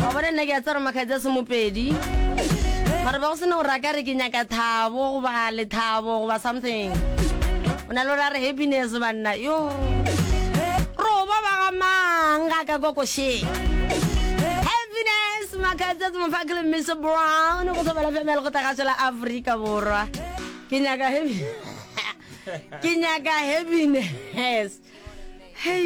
wa bona nna ke a tsara makgatsi a semopedi mara ba go sena gore a ka re ke nyaka thabo goba lethabo goba something o na le gore a re happiness banna yo roba ba ga mang ga ka kokoshe happiness makgatsi a semopaki le mr brown go sobela femele go tagaso la aforika borwa ke nyaka happy ke nyaka happiness hey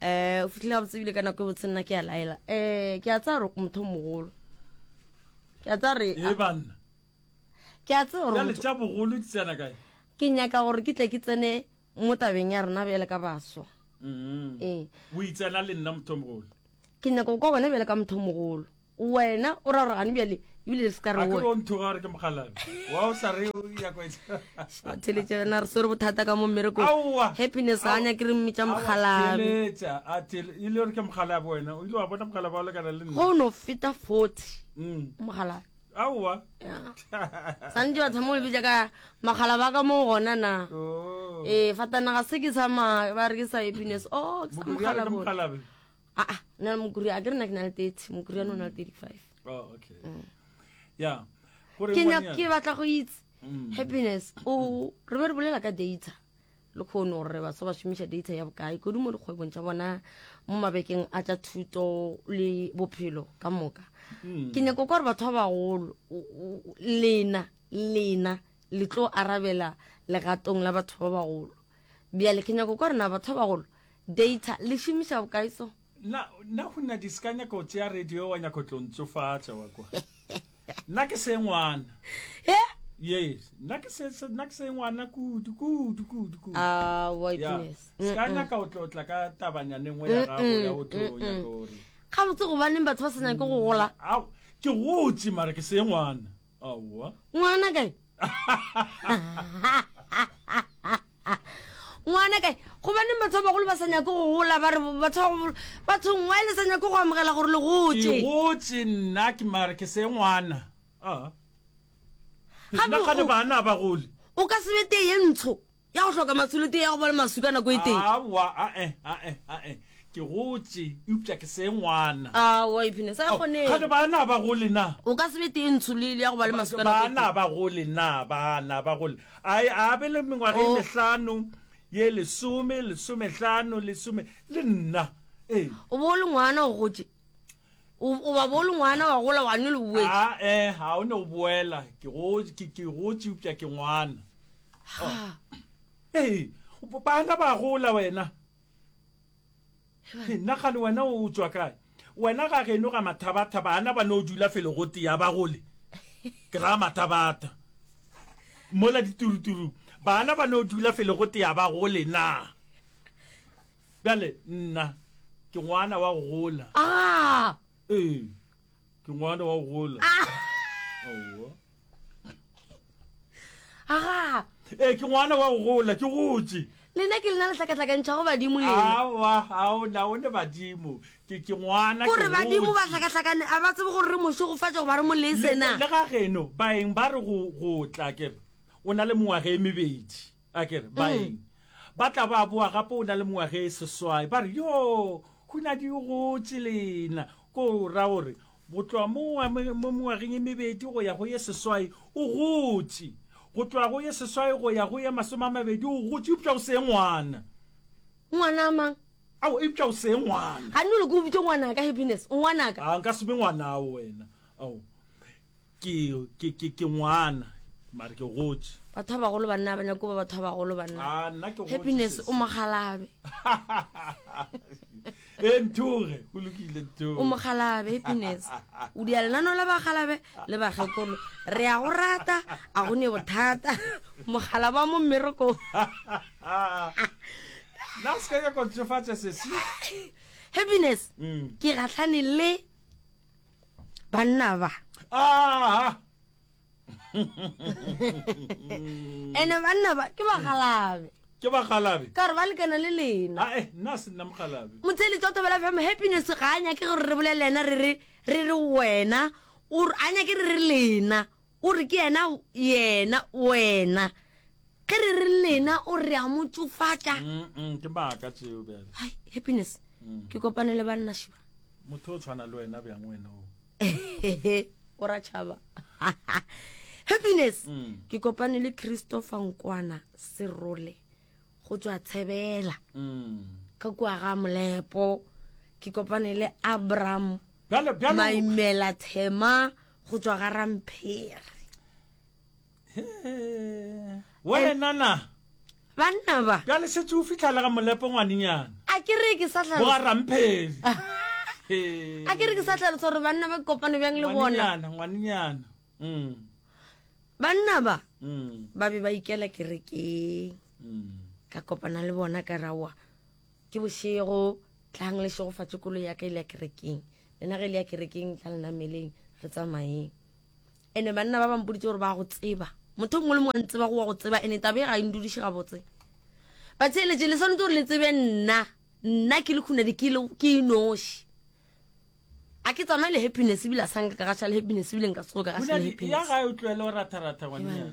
eh o fitlhile gabotse ebile ka nako e botse nna ke a laela eh ke a tsaya gore motho mogolo ke a tsaya re e banna ke a tsaya gore tša bogolo di tsena kae ke nyaka gore ke tle ke tsene mo tabeng ya rena bjale ka baswa mm-hmm. ee o itsena le nna motho mogolo ke nyaka go kwa wena bjale ka motho mogolo Wena o ra gore gane bjale ebile le se ka re a ke o ntho gore ke mogalabi wa o sa re ya kwa theletša na re swere bothata ka mo mmereko happiness ga nya ke re mmitša mogalabi theletša a tele e le gore ke mogalabi wena o ile wa bona mogalabi wa lekana le nna go no feta 40 mm. mogalabi aowa santse batho mo lebitša ka magala ba ka mo gona na oh. ee fatanaga se ke sa ba re ke sa happiness o oh, ke sa mogalabi aa ah, na le mokuri a ke re na ke na le thirty mokuri ano o na le thirty five oh, mm. ke nyaka ke batla go itse mm. happiness o re be re bolela ka data le kgone gore re baswa ba šomiša data ya bokae kodi mo dikgwebong tša bona mo mabekeng a tša thuto le bophelo ka moka mm. ke nyako kwa gore batho ba bagolo lena lena le tlo arabela legatong la batho ba bagolo bjale ke nyako kwa rena batho ba bagolo Data, Le šomiša bokae so? Na, na go nna diska nyaka go tšea radio wa nyaka go tlo ntsofatša wa kwa. Na ke se ngwana. He? Yes, na ke se, se- na ke se ngwana kudu, kudu, kudu, kudu. Ah, wa Yeah. goodness. Se ka nyaka go tlo tla ka tabanyane nngwe ya gago ya go tlo nyaka gore. Ga botse gobaneng batho ba sa nyake go gola. Au, ke gotse mara ke se ngwana. aowa ngwana kae ngwana kae gobaneng batho ba bagolo ba sa nyako go gola ba re batho ba bagolo bathong wa e le sa nyako go amogela gore le gotse igotse nna ke mare ke se ngwana a Gape nna gane o- bana ba gole o ka sebete ye ntsho Ya go hloka matsholo tee ya go ba le maswi ka nako e tee. Aowa, a-e, a-e, a-e. Ke gotše, eupša ke se ngwana. Aowa, ipshine, sa ya kgonega. Kgane baana ba go le na? O ka se be tee ntsho le le ya go ba le maswi ka nako e tee. Baana ba go le na, baana ba go le? A-e, a be le mengwaga ye mehlano, ye lesome, lesomehlano, lesome, le nna. Ee. O be o le ngwana, o gotše. o ba bolo ngwana wa gola wa nyo le boetse a ah, eh ha o ne o boela ke go ke ke go tšupja ke ngwana ha eh bana ba gola wena nna ga le wena o tswa kae wena ga geno ga mathabatha bana ba no dula felo go tea ba gole ke ra mathabatha mola dituruturu bana ba no dula felo go tea ba gole na Bjale, nna, ke ngwana wa go gola. Aa! Ee, ke ngwana wa go gola. Aowa. Aa! Ee, ke ngwana wa go gola, ke gotše. Lena ke lena le hlakahlakantšhago badimo lena. Aowa, aona, o ne badimo. Ke, ke ngwana, ke gotše. Gore badimo ba hlakahlakane, a ba tsebe gore re mošegofatša goba re molese na? Le ga geno, baeng ba re go, go tla, ke re, o na le mengwaga e mebedi. A ke re, Baeng ba tla ba boa gape o na le mengwaga e seswai, ba re, Yoo, hunadi o gotše lena. Ko ra gore, go tloga mo mengwageng e mebedi go ya go ye seswai, o gotše. Go tloga go ye seswai go ya go ye masome a mabedi, o gotše, eupša o se ngwana. Ngwana a mang? Aowa, eupša o se ngwana. Ga nno le ko o bitše ngwanaka, Happiness, ngwanaka. Aa, nka se be ngwanao wena. Ao. Ke, ke, ke, ke ngwana, mare ke gotše. Batho ba bagolo banna ba nyako ba batho ba bagolo banna. Ah, nna ke gotše. Happiness sesi. o mogalabe. e nthoge, go lokile nthoge. O mogalabe, Happiness. O dia lenano la bagalabe le bagekolo. Re a go rata, a go ne bothata. Mogalabe wa mo mmerekong. Na se ka ya go tšefatša sesi. Happiness, ke gahlane le. banna ba aa ene banna ba ke bagalabe ke bagalabe ka gore ba lekana le lena ae eh, nna se nna mogalabe motsheli tsa tobela fm happiness ga a nyake gore re bolele ena re re re re wena a nyake re re lena O re ke yena, yena, wena. Ge re re lena, o re a mo tšofatša. Mm-mm, ke maaka tšeo bjale. Hai, Happiness, mm. ke kopane le banna šiba. Motho o tshwana le wena bjang wena o. O ra tšhaba. Happiness, mm. ke kopane le Christopher Nkwana Serole go tswa Tshebela. Mm. Ka kwa ga Molepo, ke kopane le Abraham. Bjale bjale. Maimela Thema. go tšwa ga ramphere wenana banna ba bjale setse o fitlhalega molepo ngwanenyana a ke re ke sa tlhalo boga ramphele a ke re ke sa tlhalosa gore banna ba kopane bjang le bona ngwanenyana mm. banna ba mm. ba be ba ikela kerekeng mm. ka kopana le bona ka rawa Ke bošego, tlang le šegofatše koloi ya ka e le ya kerekeng. Lena ge e le ya kerekeng, tla le nameleng, re tsamayeng. Ene banna ba ba mpoditse gore ba go tseba. Motho mongwe le mongwe a ntseba go wa go tseba, ene tabe ga e ndudiše gabotse. Batheeletše, le swanetse gore le tsebe nna. Nna ke le khunadi, ke le ke inoši. A ke tsamaye le happiness ebile a sa nka ka gaša le happiness ebile nka se tsoge ka gaša le happiness. Khunadi ya gae o tloele go ratha-ratha ngwannyana.